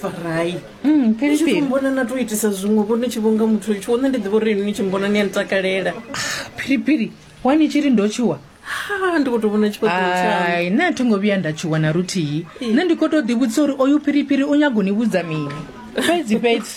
farai Mm, ni tshi Philippi. vhona na to itisa zwiṅwe vho ni tshi vhonga muthu litsho one ndi ḓivha uri ini ni tshi mbona ni a ntakalela phiripiri wani tshiri ndo tshuwa ha ndi kho to vhona tshifhaṱuwo tshawe ai nṋe a thi ngo vhuya nda tshuwa na luthihi nṋe ndi khou tou ḓivhudzisa uri oyu phiripiri u nyago ni vhudza mini fhedzi fhedzi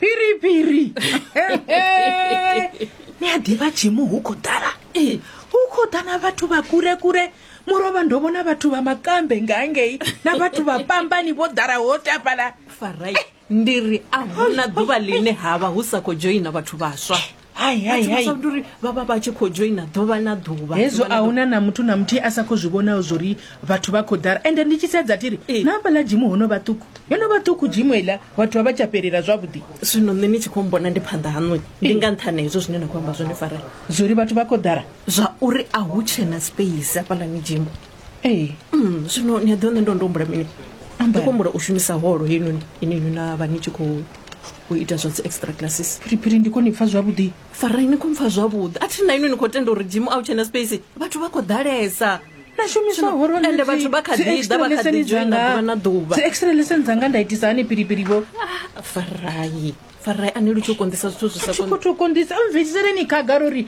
phiripiri ni a ḓivha tshimu hu khou ḓala ee hu khou ḓa na vhathu vha kure kure murovha ndo vhona vhathu vha makambe nga ngei na vhathu vha pambani vho ḓala ho tapala farai ndi ri a huna ḓuvha line ha vha hu sa khou dzhoina vhathu vhaswa uri vha vha vha tshi khou dzhoina ḓuvha na ḓuvha hezwo a huna na muthu na muthihi a sa khou zwi vhonaho zwo ri vhathu vha khou ḓara ende ndi tshi sedza thi ri na hafhaḽa dzimu ho no vha ṱuku yo no vha ṱuku dzimu iḽa vhathu vha vha tsha fhelela zwavhuḓi zwino nṋe ni tshi khou mbona ndi phanḓa haṋu ndi nga nṱhane hezwo zwine na khou amba zwone fara zwo ri vhathu vha khou ḓara zwa uri a hu tshena space hafhaḽani dzimu ee mm, zwino ni a ḓiwa nṋe ndo ndo humbula mini ndi khou humbula u shumisa holo heinoni ine inwi na vha ni tshi khou u ita zwa dzi extra classes phiriphiri ndi koni pfa zwavhuḓi farai ni khou mpfa zwavhuḓi a thi na inwi ni khou tenda uri jimu a u tshena space vhathu vha khou ḓalesa shumiswaende vhathu vha kha ḓiḓa vha kha ḓi joina ḓuvha na ḓuvha dzi extra lesson dzanga nda itisa hani phiriphiri vho ah, farai farai ani lu tshi u konḓisa zwithu zwi sa khou tou konḓisa mvisiseleni khagala uri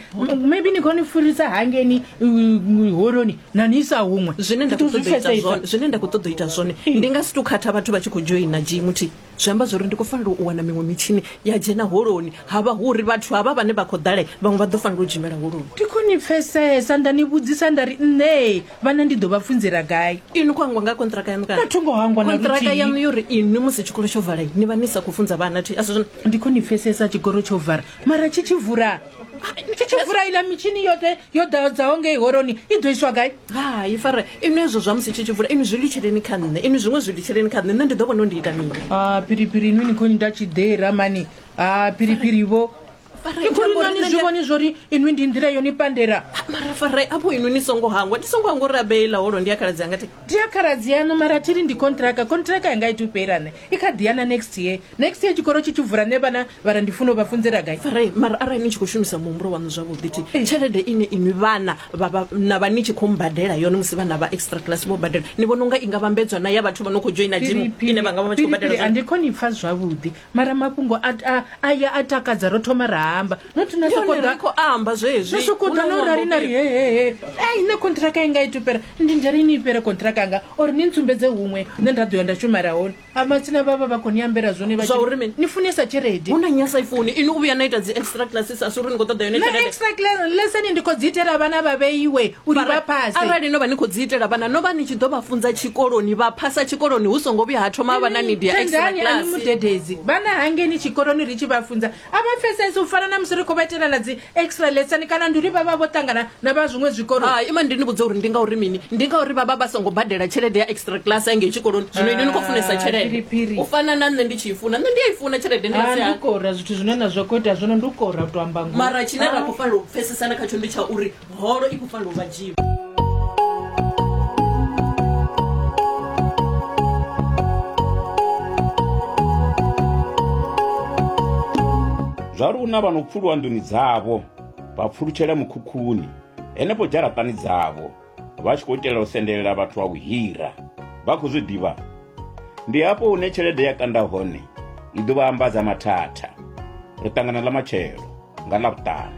maybe ni khou ni furisa hangeni holoni na ni isa huṅwe zwine nda khou ṱoḓa u ita zwone zwine nda khou ṱoḓa u ita zwone ndi nga si tou khatha vhathu vha tshi khou dzhoina jimu thi zwi amba zwori ndi khou fanela u wana miṅwe mitshini ya dzhena holoni ha vha hu uri vhathu havha vhane vha khou ḓale vhaṅwe vha ḓo fanela u dzhimela holoni ndi khou ni pfesesa nda ni vhudzisa nda ri nṋee vhana ndi ḓo vha funzela gai inwi khou hangwa nga kontraka yanu kana tho ngo hangwa na kontraka yanu yo ri inwi musi tshikolo tsho vala ni vha ni sa khou funza vhana thi asi ndi khou ni pfesesa tshigoro tsho vara mara tshi tshi vula tshi tshi vula ila mitshini yoṱhe yo ḓadzaho ngei horoni i ḓo iswa gai hai fara inwi ezwo zwa musi tshi tshi vula inwi zwi litsheleni kha nṋe inwi zwiṅwe zwi litsheleni kha nṋe nṋe ndi ḓo vhona u ndi ita mini a phiriphiri inwi ni khou ni nda tshiḓera mani a phiriphiri vho ke khori nani zwi vhone zwori inwi ndi nḓila yo ni pandela mara farai apo inwi ni songo hangwa ni songo hangwa uri abeila holo ndi ya khaladzi anga ti ndi ya khaladzi yanu mara thiri ndi kontraka kontraka yanga i tupela ne i kha ḓi yana next year next year tshikoro tshi tshi vula ne vhana vha ra ndi funa u vha funzela gai farai mara arali ni tshi khou shumisa muhumbulo waṋu zwavhuḓi ti eh. tshelede ine inwi vhana na vha ni tshi khou mbadela yone musi vhana vha extra class vho badela ni vhona unga i nga vhambedzwa na ya vhathu vha no khou joina jimu ine vha nga vha vha tshi khou badela ndi khou ni pfa zwavhuḓi mara mafhungo aya a takadza ro thoma ra amba nothi na sokoḓakhou amba zwezwi na sokoḓa no rali na ri hehehe ei nṋe contract inga i tupera ndi ndari ini ipere contract anga or ni ntsumbedze huṅwe nṋe nda ḓo ya nda shumela hone a matsina vhavha vha khou ni ambela zwone vha zwauri mini ni funesa tshelede hu na nyasa ifuni ini u vhuya na ita dzi extra classes a si uri ni khou ṱoḓa yone tshelede extra lesson ndi khou dzi itela vhana vha vheiwe u li vha phase arali no vha ni khou dzi itela vhana no vha ni tshi ḓo vha funza tshikoloni vha phasa tshikoloni hu songo vhuya ha thoma vha na nidi ya extra Tendani ani class mudededzi vhana hangeni tshikoloni ri tshi vha funza a vha pfesesi u fana na musi ri khou vha itela na dzi extra lesson kana ndi uri vha vha vho ṱangana na vha zwiṅwe zwikolo hai ima ndi ni vhudze uri ndi ngauri mini ndi ngauri vha vha vha songo badela tshelede ya extra class engei tshikoloni zwino ini ni khou funesa Ah, tshelede phiriphiri. u fana na nṋe ndi tshi i funa nṋe ndi a i funa tshelede ndi nga Ah, si ndi hani. kora zwithu zwine na zwa khou ita zwino ndi u kora u to amba ngoho mara tshine ra khou fanela u pfesesana khatsho ndi tsha uri holo i khou fanela u vha dzhiwa zwa luna vha no pfuluwa nḓuni dzavho vha pfulutshela mukhukhuni henefho dzharaṱani dzavho vha tshi khou itela u sendelela vhathu vha vhuhira vha khou zwi ḓivha ndi hafho hune tshelede ya kanda hone i ḓo vha ambadza mathatha ri ṱangana ḽa matshelo nga ḽavhuṱanu